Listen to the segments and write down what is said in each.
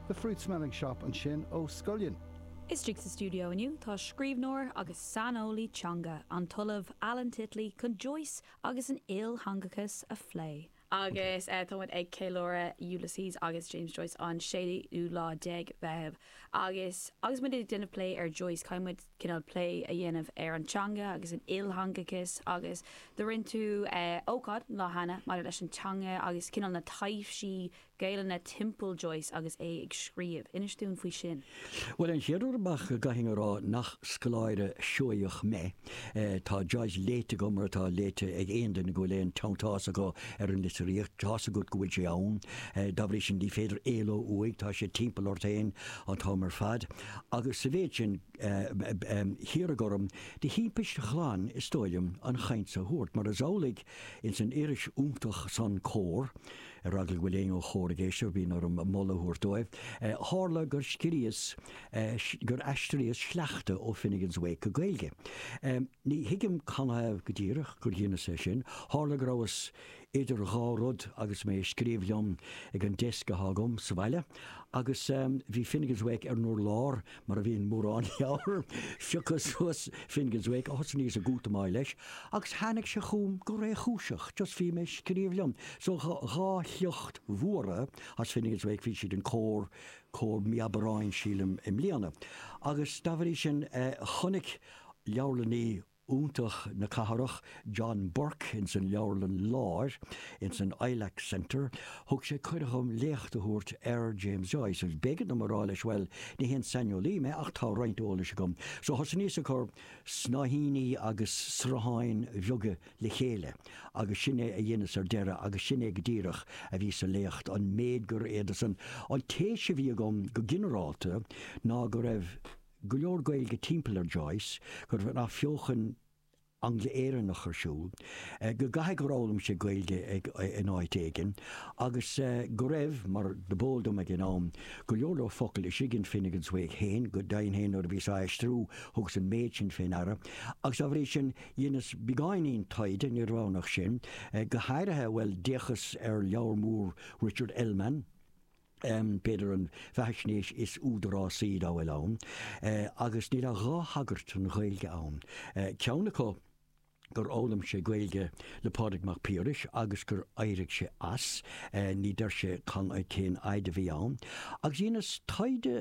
The Fruit Smelling Shop ansin ó Scullion. Istigh sa stiúideo inniu tá scríbhneoir agus saineolaí teanga, an tOllamh Alan Titley, chun Joyce agus an iltheangachas a phlé. Agus tá muid ag ceiliúradh Uiliséas agus James Joyce an séú lá déag Mheitheamh agus agus muid ag déanamh plé ar Joyce, caithfidh muid, cineál plé a dhéanamh ar an teanga agus an iltheangachas agus do rinne tú ócáid an lá cheana maidir leis an teanga agus cineál na taibhsí Gaelainne timpeall Joyce agus é ag scríobh. Inis dúinn faoi sin. Bhuel, an chéad rud ar ndóigh go gcaithfinn a rá nach scoláire Seoigheach mé. Tá Joyce léite agam mar atá léite ag aon duine go bhfuil aon teanntás acu ar an litríocht. Tá's agat go bhfuil sé ann. Dá bhrí sin ní féidir éaló uaidh, tá sé timpeall ort an t-am ar fad. Agus sa mhéid sin, hiarradh orm, de thimpist ghlan is dóigh liom, an chaint so a thabhairt, mar is amhlaidh ins an iris iontach san, Comhar, ar eagla go bhfuil éinne ó Chomhar ag éisteacht, bíonn orm moladh a thabhairt dóibh, tharla gur scríos, gur aistríos sleachta ó Finnegans Wake go Gaeilge. Ní thuigim canathaobh go díreach gur dheineas é sin, tharla go rabhas idir dhá rud agus mé ag scríobh liom ag an desk athá agam sa bhaile agus bhí Finnegans Wake ar an urlár mar a bhíonn mórán leabhar. Phiocas suas Finnegans Wake, thosnaíos ag útamáil leis agus tháinig sé chugam go réchúiseach just bhí mé ag scríobh liom so dhá shliocht mhóra as Finnegans Wake bhí siad in Comhar, Comhar Mí Aibreáin sílim i mbliana agus dá bhrí sin chonaic leabharlannaí iontach na cathrach, John Burke ins an Leabharlann Lár, ins an Ilac Centre, thug sé cuireadh dhom léacht a thabhairt ar James Joyce agus b'éigean dom a rá leis bhuel, ní haon saineolaí mé ach tá roinnt eolais agam. So thosnaíos ag cur snáithíní agus srutháin bheaga le chéile agus sin é a dheineas ar deireadh agus sin é go díreach a bhí sa léacht, an méid gur fhéadas. An téis a bhí agam go ginearálta ná go raibh. go leor Gaeilge timpeall ar Joyce, go raibh an Athbheochan Angla-Éireannach ar siúl, go gcaithfidh gur fhoghlaim sé Gaeilge in áit éigin, agus go raibh, mar dob eol dom ag an am, go leor leor focal istigh in Finnegans Wake féin, go deimhin féin nuair a bhíos á aistriú thugas an méid sin fé ndeara, agus dá bhrí sin dheineas beagáinín taighde, ní raibh ann ach sin, go háirithe, bhuel, d'fhéachas ar leabhar mór Richard Ellmann, b'fhéidir an bheathaisnéis is údarásaí dá bhfuil ann, agus níl ach dhá thagairt don Ghaeilge ann, ceann acu gur fhoghlaim sé Gaeilge le Pádraig Mac Piarais agus gur éirigh sé as, ní deir sé cén fhaid a bhí sé ann, agus dheineas taighde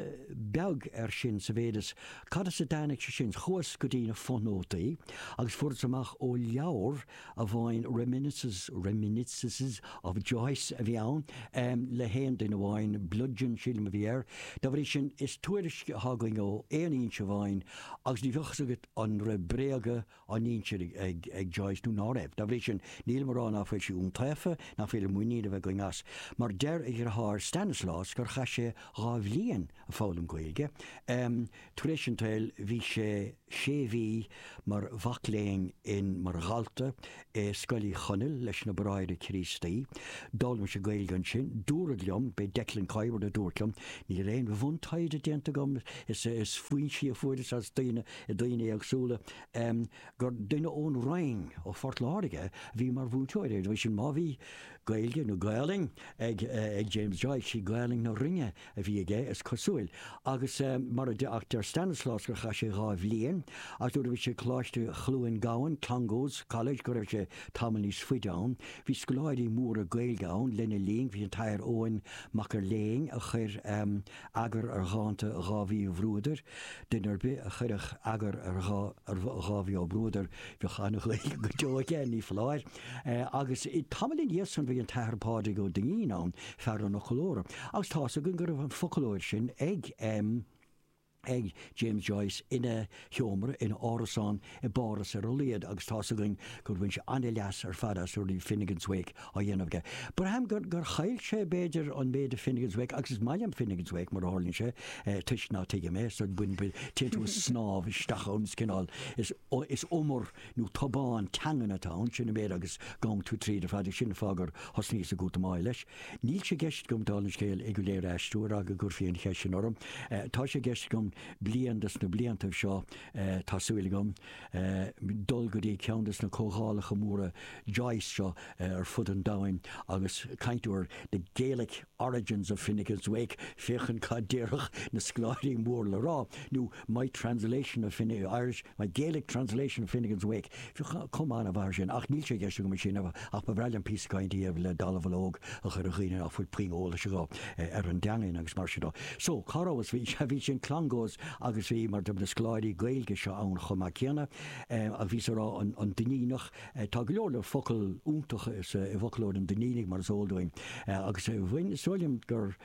beag air sin sa mhéid is cad as a dtáinig sé sin, chuas go dtí na fothnótaí agus fuaireas amach ó leabhar, amháin 'Reminiscences, Reminiscences of Joyce' a bhí ann, le haon duine amháin, 'Bludgeon' sílim a bhí air. Dá bhrí sin is tuairisc atá againn ó aon fhoinse amháin agus ní bheadh fhios agat an raibh bréaga á n-insint ag Joyce nó ná raibh. Dá bhrí sin nílim á rá ná fuil sé iontaofa, nach féidir muinín a bheith againn as. Mar deir a dhriotháir Stanislaus gur chaith sé dhá bhliain ag foghlaim Gaeilge. Tar éis an tsaoil bhí sé. sé mhí mar mhac léinn in mar dhalta i Scoil Uí Chonaill leis na Bráithre Críostaí. D'fhoghlaim sé Gaeilge ansin. Dúradh liom, b'é Declan Kiberd a dúirt liom, níl aon bhuntaighde déanta agam, is is foinsí a fuaireas as daoine i daoine éagsúla, gur duine ón Rinn, ó Phort Láirge, a bhí mar mhúinteoir air. Anois, má bhí Gaeilge nó Gaolainn ag James Joyce, sí Gaolainn na Rinne a bhí aige, is cosúil. Agus mar a ach deir Stanislaus gur chaith sé dhá bhliain, agus nuair a bhí sé ag Coláiste Chluain Gabhann, Clongowes College, go raibh sé tamall níos faide ann. Bhí scoláirí móra Gaeilge ann lena linn, bhí an tAthair Eoin Mac Fhir Léinn a chuir eagar ar dhánta Dháibhí Uí Bhruadair, duine ar bith a chuirfeadh eagar ar Dháibhí Ó Bruadair bheadh an-Ghaeilge go deo aige, ní foláir. Agus tamall ina dhiaidh san bhí an tAthair Pádraig Ó Duinnín ann, fear an fhoclóra, agus tá's againn go raibh an foclóir sin ag ag James Joyce ina sheomra ina árasán i bPáras ar a laghad agus tá's againn gur bhain sé an-leas ar fad as nuair a bhí Finnegans Wake á dhéanamh aige. Braithim gur gur chaill sé b'fhéidir an méid a Finnegans Wake agus is maith liom Finnegans Wake mar a tharlaíonn sé toisc ná tuigim é so bhain bhain téann tú ag snámh isteach ann is cineál is is umar nó tobán teangan atá ann, sin an méid agus gabhann tú tríd ar fad, sin an fáth gur thosnaíos ag útamáil leis. Níl sé i gceist agam, dála an scéil, é go léir a aistriú, ar eagla go gcuirfí an cheist sin orm. Tá sé i gceist agam, bliain de sna bliantaibh seo, tá súil agam, dul go dtí ceann de sna comhdhálacha móra Joyce seo ar fud an domhain agus caint ar The Gaelic. Origins of Finnegans Wake, féachaint cad déarfadh na scoláirí mór le rá, nó My Translation of Fine, Irish, My Gaelic Translation of Finnegans Wake. Bheadh cuma an-mhaith ar sin, ach níl sé i gceist agam é sin a rá ach ba bhreá liom píosa cainte a dhéanamh le dallamhullóg a chur ar dhaoine ná fuil puinn eolais acu ar an dteangain agus mar sin dó. So, cá rabhas? Bhí, sea, bhí sé in Clongowes agus bhí, mar, do na scoláirí Gaeilge seo ann chomh maith céanna, bhíos á rá an Duinníneach, Tá go leor focal iontacha i bhfoclóir an Duinnínigh, mar is eol dúinn, agus bhain, is dóigh liom, gur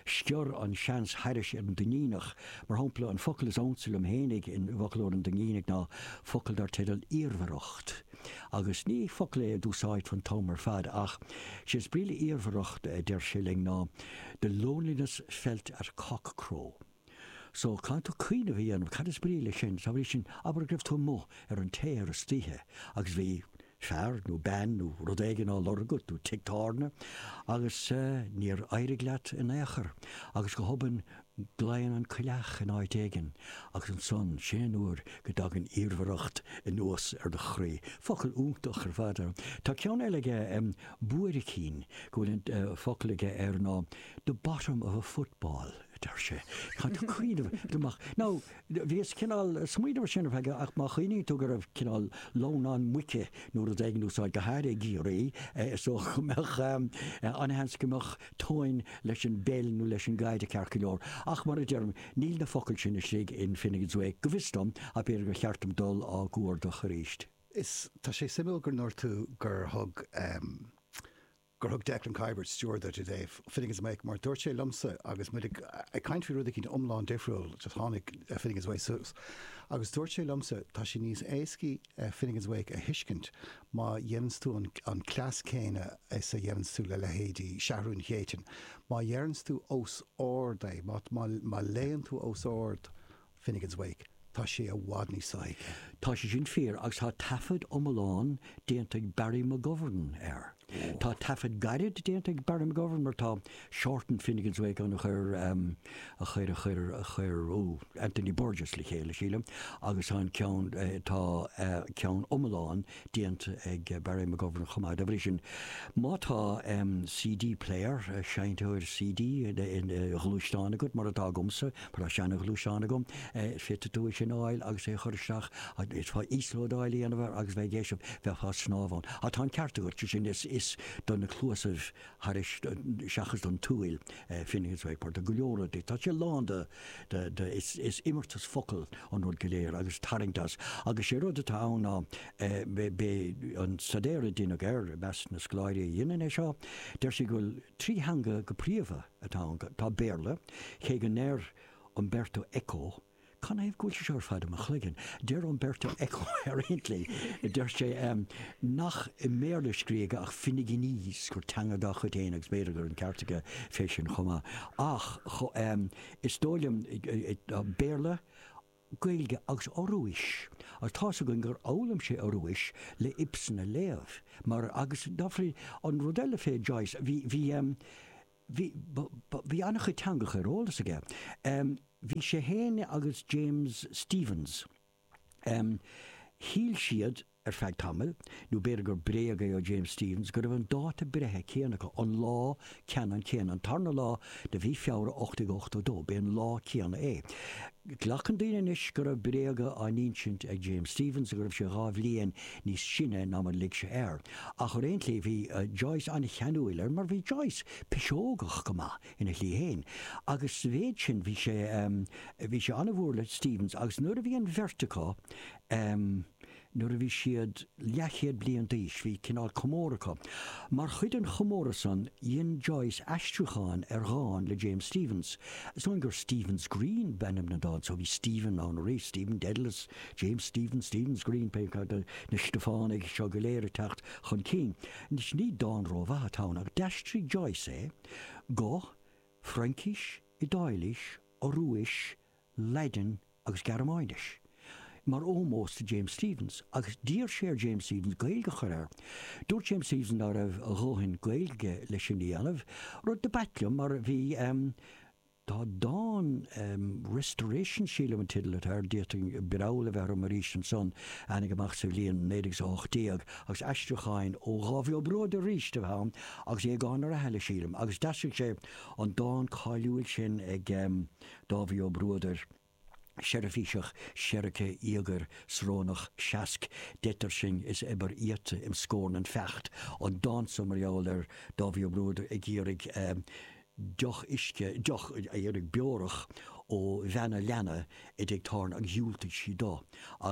sciorr an seans thairis ar an Duinníneach. Mar shampla, an focal is ansa liom fhéinig i bhfoclóir an Duinnínigh ná focal dar teideal 'iarmhaireacht' agus ní focal é a d'úsáidfeá an t-am ar fad, ach sé is brí le 'iarmhaireacht' deir sé linn, ná 'the loneliness felt at cock-crow'. So, caithfidh tú cuimhneamh a dhéanamh cad is brí leis sin, dá bhrí sin, abair go raibh tú amuigh ar an téar istoíche agus bhí fear nó bean nó rud éigin á lorg agat nó tigh tábhairne agus níor éirigh leat in aon chor agus go hobann glaonn an coileach in áit éigin agus ansan, sin an uair go dtagann iarmhaireacht anuas ar do chroí. Focal iontach ar fad. Tá ceann eile aige, buaircín, go bhfuil an focal aige air ná the bottom of a football. a deir sé. Tá tú ag cuimhneamh amach. Nó bhíos cineál ag smaoineamh air sin, ar feadh, ach má chuimhníonn tú go raibh cineál lamhnán muice nó rud éigin in úsáid go háirithe i gCiarraí, is dócha go mbeadh, ana-sheans go mbeadh tóin leis an bpeil nó leis an gcaid ceart go leor. Ach mar a deirim, níl na focail sin istigh in Finnegans Wake, go bhfios dom, ach b'fhéidir gur cheart dom dul á gcuardach arís. Is tá sé suimiúil go ndúirt tú gur thug, gur thug Declan Kiberd stiúir duit i dtaobh Finnegans Wake mar dúirt sé liomsa agus muid ag caint faoi rud eicínt iomlán difriúil just tháinig Finnegans Wake suas agus dúirt sé liomsa tá sé níos éascaí Finnegans Wake a thuiscint má dhéananns tú an cleas céanna is a dhéananns tú le leithéidí Seathrúin Chéitinn má dheireanns tú os ard é má léann tú os ard Finnegans Wake, tá sé i bhfad níos sothuigthe. Tá sé sin fíor agus tá taifead iomlán déanta ag Barry McGovern air. Tá taifead gairid déanta ag Barry McGovern mar tá Shorter Finnegans Wake ann a chuir, em, a chuir, a chuir, a chuir, ó, Anthony Burgess le chéile, sílim, agus tá an ceann, tá, eh, ceann iomlán, déanta ag Barry McGovern chomh maith. Dá bhrí sin, má tá CD player, seinnteoir CD id ghluaisteán agat, mar atá agamsa, mar tá seana-ghluaisteán agam, féadfaidh tú é sin a fháil agus é a chur isteach, d'fhéadfá íoslódáil a dhéanamh air agus bheith ag éisteacht, bheifeá ag snámh ann. Ach tá an ceart agat, sé sin is do na cluasaibh thairis, seachas don tsúil Finnegans Wake mar tá go leor rudaí. Tá sé lán de, de, is, is imeartas focal an rud go léir agus tarraingt as. Agus sé rud atá ann ná b'é, b'é an staidéar a deineadh air i measc na scoláirí a dheineann é seo, deir siad go bhfuil trí theanga go príomha atá ann, tá Béarla, cé go ndeir Umberto Eco, Cad ina thaobh go bhfuil sé seo ar fad i mo chloigeann? Deir Umberto Eco ar aon tslí, deir sé, nach i mBéarla a scríobhadh é ach Finneganese, gur teanga dá chuid féin agus b'fhéidir go raibh an ceart aige fé sin chomh maith. Ach is dóigh liom, Béarla, Gaeilge agus Ioruais, agus tá's againn gur fhoghlaim sé Ioruais le Ibsen a léamh, mar, agus dá bhrí, an rud eile fé Joyce, bhí, bhí, Bhí, bhí an-chuid teangacha ar eolas aige. Bhí sé fhéin agus James Stephens, shíl siad ar feadh tamaill, nó b'fhéidir gur bréag é ó James Stephens, go raibh an dáta breithe céanna acu, an lá ceannann céanna, an tarna lá de mhí Feabhra 1882, b'é an lá céanna é. Glacann daoine anois go raibh bréaga á n-insint ag James Stephens, go raibh sé dhá bhliain níos sine ná mar a lig sé air. Ach ar aon tslí bhí Joyce an-cheanúil air mar bhí Joyce piseogach go maith ina shlí fhéin agus sa mhéid sin bhí sé, em, bhí sé an-mhór le Stephens agus nuair a bhí an bheirt acu, em, nuair a bhí siad leathchéad bliain d'aois bhí cineál comóradh acu. Mar chuid den chomóradh san dhein Joyce aistriúchán ar dhán le James Stephens, is dóigh gur Stephen's Green b'ainm don dán so bhí Stephen ann aríst, Stephen Dedalus, James Stephens, Stephen's Green, pé acu na Stiofánaigh seo go léir ag teacht chun cinn, anois ní dán ró-mhaith atá ann, ach d'aistrigh Joyce é go, Fraincís, Iodáilís, Ioruais, Laidin agus Gearmáinis, mar ómós do James Stephens, agus d'iarr sé ar James Stephens Gaeilge a chur air. Dúirt James Stephens ná raibh a dhóthain Gaeilge aige le sin a dhéanamh, rud do b'ait liom, mar bhí, Tá dán, Restoration sílim an teideal atá air, d'fhéadfadh breall a bheith orm arís ansan, a tháinig amach sa bhliain 1918 agus aistriúcháin ó Dháibhí Ó Bruadair arís a bhí ann agus Aogán Ó Rathaille sílim agus d'aistrigh sé an dán cáiliúil sin ag Dáibhí Ó Bruadair, seirbhíseach seirgthe íogair srónach seasc d'eitigh sinn is eibear íota im scornain feacht an dán so mar gheall ar Dáibhí Ó Bruadair ag iarraidh deoch uisce deoch a iarraidh beorach ó bhean an leanna i dtig tábhairne agus dhiúltaigh sí do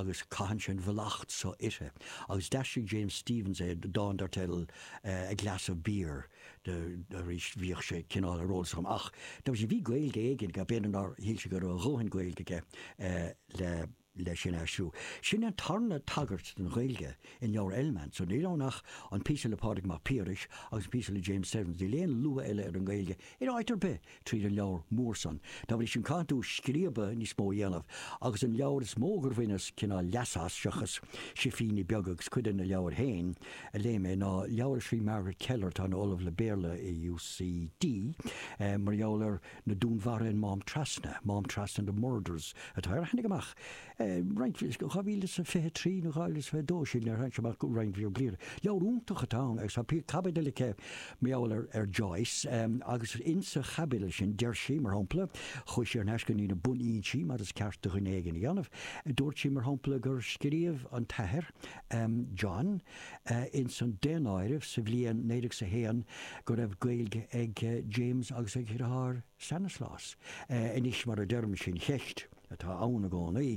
agus caitheann sé an mhallacht so uirthi agus d'aistrigh James Stephens é dán dar teideal A Glass of Beer. de, arís bhíodh sé cineál ar eolas agam ach bhí sé, bhí Gaeilge éigin aige, b'fhéidir nár shíl sé go raibh a dhóthain Gaeilge aige le sin a aistriú. Sin an tarna tagairt don Ghaeilge in leabhar Ellmann, so níl ann ach an píosa le Pádraig Mac Piarais agus an píosa le James Stephens, níl aon lua eile ar an nGaeilge in áit ar bith tríd an leabhar mór san. Dá bhrí sin caitheann tú scríobadh níos mó a dhéanamh, agus an leabhar is mó gur bhaineas cineál leas as, seochas sifíní beaga agus cuid de na leabhair féin a léigh mé, ná leabhar a scrígh Margaret Kelleher, atá ina Ollamh le Béarla i UCD, mar gheall ar na dúnmharuithe in Mám Trasna, Mám Trasna, The Murders, atá air. Tháinig amach. Roinnt bhliain, 2023 nó 2022, sin níor tháinig sé amach go roinnt bhliain, bliain. Leabhar iontach atá ann agus tá píosa, caibidil aici mar gheall ar Joyce agus in sa chaibidil sin deir sí, mar shampla, chuaigh sí thar n-ais go dtí na bunfhoinsí mar is ceart do dhuine éigin a dhéanamh. Dúirt sí, mar shampla, gur scríobh an t-athair John in san daonáireamh sa bhliain naoi déag is a haon go raibh Gaeilge ag James agus ag a dheartháir Stanislaus. Anois, mar a deirim, sin ceist. atá ann i gcónaí,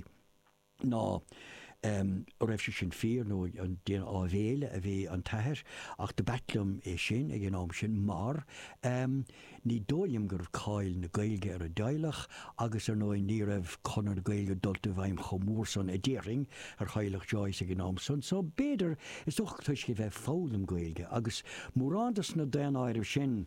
ná raibh sé sin fíor, nó ag déanamh áibhéile a bhí an t-athair, ach do b'ait liom é sin ag an am sin mar ní dóigh liom go raibh cáil na Gaeilge ar an dteaghlach agus ar ndóigh ní raibh Conradh na Gaeilge dulta i bhfeidhm chomh mór san a déarfainn ar theaghlach Joyce ag an am san so b'fhéidir is dócha toisc é bheith ag foghlaim Gaeilge agus mórán de sna daonáirimh sin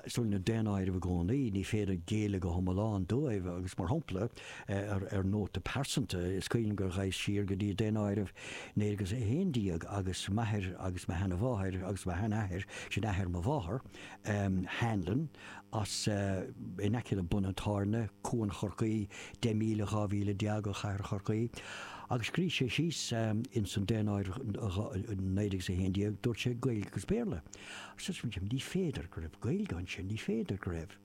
So na daonáirimh i gcónaí, ní féidir géilleadh go hiomlán dóibh, agus mar shompla, ar nóta pearsanta, is cuimhin liom gur ghaibheas siar go dtí daonáireamh naoi déag is a haon déag agus m'athair agus mo sheana-mháthair agus mo shean-athair, sin athair mo mháthar, Hanlon, as, in aice le Bun an Tábhairne, Cuan Chorcaí, deich míle, dhá mhíle déag ó Chathair Chorcaí. Agus scrígh sé síos ins an daonáireamh naoi déag is a haon déag, dúirt sé Gaeilge agus Béarla. Ní féidir go raibh Gaeilge ansin, ní féidir go raibh.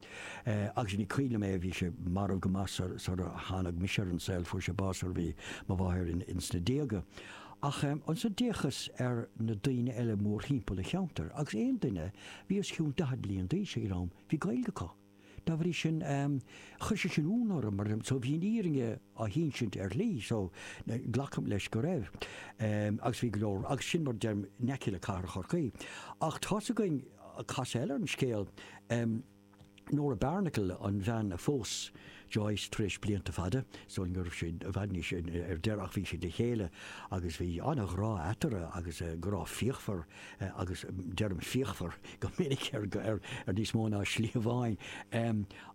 Agus ní cuimhin liom é, bhí sé marbh go maith sar a tháinig mise ar an saol, fuair sé bás sar a bhí mo mháthair ins na déaga. Ach ansan d'fhéachas ar na daoine eile mórthimpeall a' cheantair agus aon duine bhí os cionn daichead bliain d'aois ag an am, bhí Gaeilg acu. Dá bhrí sin, chuir sé sin iúnadh orm mar so bhí an fhírinne á hinsint ar shlí so glacaim leis go raibh. Agus bhí go leor, agus sin mar a deirim in aice le Cathair Chorcaí. Ach tá's againn casadh eile ar an scéal, Nora Barnacle, an bhean a phós Joyce tar éis blianta fada sul go raibh siad i bhfad níos ar deireadh ach bhí siad le chéile agus bhí an-ghrá eatarthu agus grá fíochmhar agus deirim fíochmhar go minic ar ar níos mó ná slí amháin.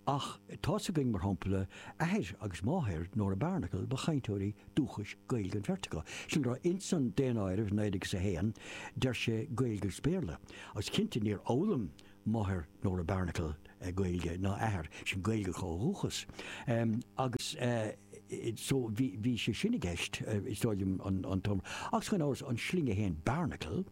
Ach tá's againn mar shampla athair agus máthair Nora Barnacle ba chainteoirí dúchais Gaeilge an bheirt acu. Sin a raibh ins an daonáireamh 1901 deir sé Gaeilge agus Béarla agus cinnte níor fhoghlaim máthair Nora Barnacle Gaeilge ná athair, sin Gaeilge acu ó dhúchas agus so bhí sé sin i gceist is dóigh liom an t-am ar fad agus gan amhras an sloinne fhéin Barnacle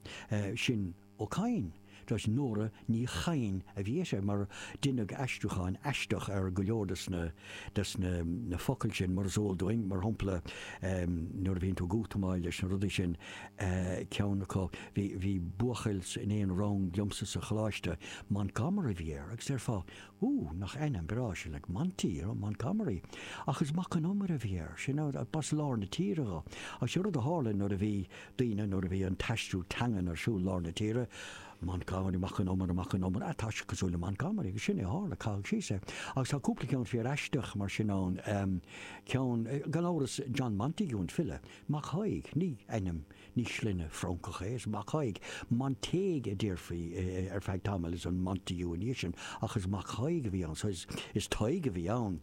sin Ó Cadhain toisc Nora Ní Chadhain a bhí uirthi mar deineadh aistriúcháin aisteach ar go leor de na de na focail sin mar is eol dúinn mar shampla nuair a bhíonn tú ag útamáil leis na rudaí sin ceann acu Bhí, bhí buachaill in aon rang liomsa sa choláiste, Montgomery a bhí air, agus déarfá, Ú, nach ainm breá sin, like, Monty, you know, Montgomery. Ach is Mac an Iomaire a bhí air, sin, agus b'as lár na tíre dho. Agus sé rud a tharla nuair a bhí daoine, nuair a bhí an t-aistriú teangan ar siúl i lár na tíre, Montgomery, Mac an Iomaire, Mac an Iomaire, ah, tá sé cosúil le Montgomery, agus sin é a tharla, caitheadh síos é. Agus tá cúpla ceann fíoraisteach mar sin ann, ehm, ceann, gan amhras, John Montague, an file, Mac Thaidhg, ní ainm. Ní sloinne Francach é, is Mac Thaidhg. Montague a déarfaí ar feadh tamaill, is an Montague ina dhiaidh sin, ach is Mac Thaidhg a bhí ann, so is Tadhg a bhí ann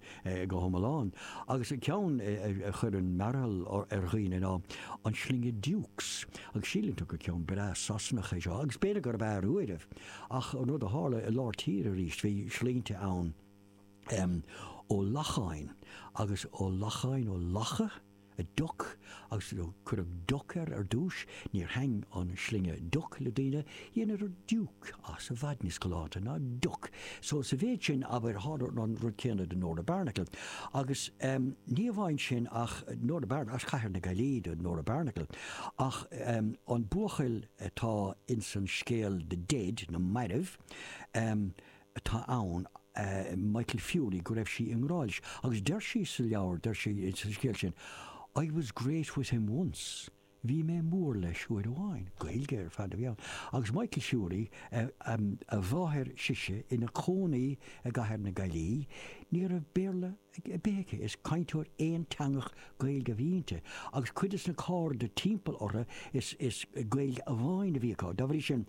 go hiomlán. Agus an ceann a chuireann mearbhall ar dhaoine ná an sloinne Dukes, agus síleann tú gur ceann breá Sasanach é seo, agus b'fhéidir gurb ea ar uairibh, ach an rud a tharla i lár tíre aríst, bhí sloinne ann, Ó Lacháin, agus Ó Lacháin, Ó Lacha? a Duck agus cuireadh Duck air ar dtúis, níor thaitin an sloinne Duck le daoine, dheineadar Duke as, i bhfad níos galánta ná Duck. So sa mhéid sin, abair, tharla an rud céanna do Nora Barnacle. Agus ehm, ní amháin sin ach Nora Barnacle, as Cathair na Gaillimhe do Nora Barnacle, ach ehm, an buachaill atá insan scéal The Dead, na mairbh, ehm, atá ann, Michael Furey, go raibh sí i ngrá leis agus deir sí sa leabhar, deir sí sa scéal sin, 'I was great with him once', bhí mé mór leis uair amháin. Gaeilge ar fad a bhí ann. Agus Michael Furey, a máthair sise, ina cónaí i gcathair na Gaillí, ní raibh Béarla ar bith aici, is cainteoir aonteangach Gaeilge a bhí inti. Agus cuid de na cairde timpeall orthu is Gaeilge amháin a bhí acu. Dá bhrí sin.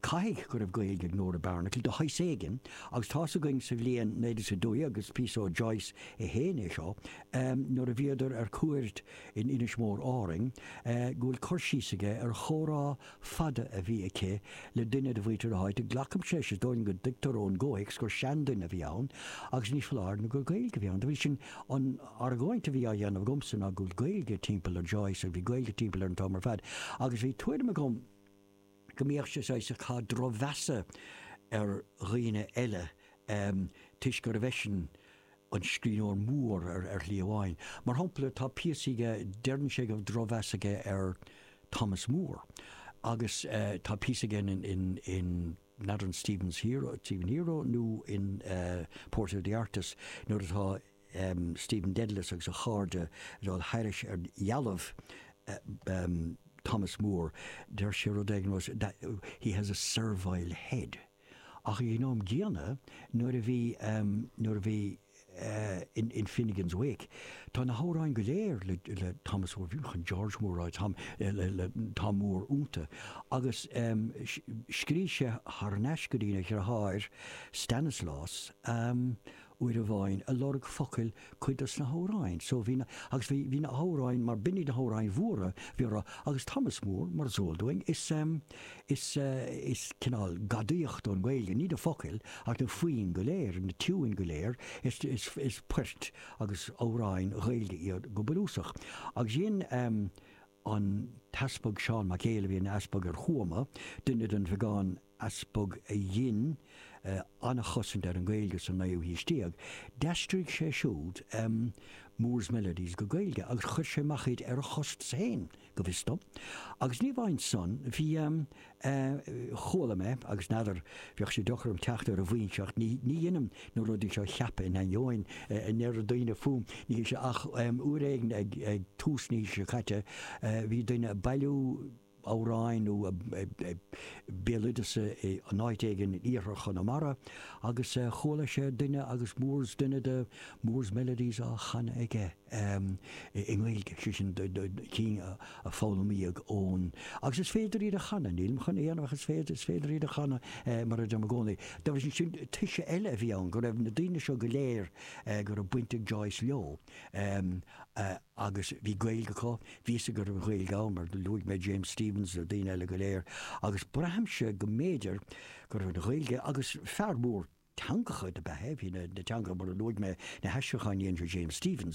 Caithfidh go raibh Gaeilge ag Nora Barnacle de shaghas éigin agus tá's againn sa bhliain naoi déag a dó dhéag is píosa ó Joyce é féin é seo, nuair a bhíodar ar cuairt in Inis Mór, Árainn, go bhfuil cur síos aige ar chomhrá fada a bhí aici le duine de mhuintir na háite. Glacaimse, is dóigh go dtuigtear ón gcomhthéacs gur seanduine a bhí ann agus ní foláir nó gur Gaeilge a bhí ann. Dá bhrí sin an argóint a bhí á dhéanamh agamsa ná go bhfuil Gaeilge timpeall ar Joyce agus bhí Gaeilge timpeall air an t-am ar fad agus bhí tuairim agam go mbeadh sé saghas ag caitheamh drochmheasa ar dhaoine eile toisc gurbh eisean an scríbhneoir mór ar shlí amháin. Mar shampla tá píosaí aige, deireann sé go raibh drochmheas aige ar Thomas Moore agus tá píosa aige in, in ní fheadar an Stephen's Hero, Stephen Hero nó in Portrait of the Artist nuair atá, Stephen Dedalus agus a chairde ag gabháil thairis ar dhealbh Thomas Moore, deir sé rud éigin was it that he has a servile head ach ag an am gcéanna nuair a bhí, nuair a bhí in Finnegans Wake tá na hamhráin go léir le, le Thomas Moore, chan George Moore, Tom, le, le Tom Moore ionta agus scrígh sé thar n-ais go dtína dhriotháir Stanislaus, uair amháin, ag lorg focail cuid do sna hamhráin so. Bhí na, agus bhí, bhí na hamhráin mar b'in iad na hamhráin mhóra bhí á rá, agus Thomas Moore, mar is eol dúinn, is ehm, is, is cineál gadaíocht ón nGaeilge, ní na focail ach na foinn go léir, na tiúin go léir, is poirt agus amhráin Ghaeilge iad go bunúsach. Agus dhein ehm. an tEaspag Seán Mac Éil a bhí ina Easpag ar Thuaim, duine den bheagán Easpag a dhein an-chosaint ar an Ghaeilge sa naoú haois déag. D'aistrigh sé siúd Moore's Melodies go Gaeilge agus chuir sé amach iad ar a chostas féin, go bhfios dom. Agus ní amháin san, bhí. chuala mé, agus n'fheadar, bheadh sé deocair dom teacht ar an bhfoinseacht, ní dheinim ná rudaí seo a cheapadh in ainneoin a ndeir daoine fúm, ní, sé, ach uair éigin ag tús na haoise seo caite, bhí duine ag bailiú amhráin nó béaloideas in áit éigin in iarthar Chonamara agus chuala sé duine agus Moore's, duine de Moore's Melodies á chanadh aige. em. i nGaeilge, sé sin cinn a foghlaimíodh ón. Agus is féidir iad a chanadh, nílim chun a dhéanamh ach is féidir, is féidir iad a chanadh eh mar a deirim i gcónaí. Dá bhrí sin sin toise eile a bhí ann go raibh na daoine seo go léir eh go raibh baint ag Joyce leo. Em. eh agus bhí Gaeilge acu, bhí fhios acu go raibh Gaeilge ann mar luaigh mé, James Stephens na daoine eile go léir agus braithimse go mb'fhéidir go raibh an Ghaeilge agus fear mór teangacha do b'ea é, bhí na teangacha mar a luaigh mé, na haistriúcháin a dhein sé James Stephens,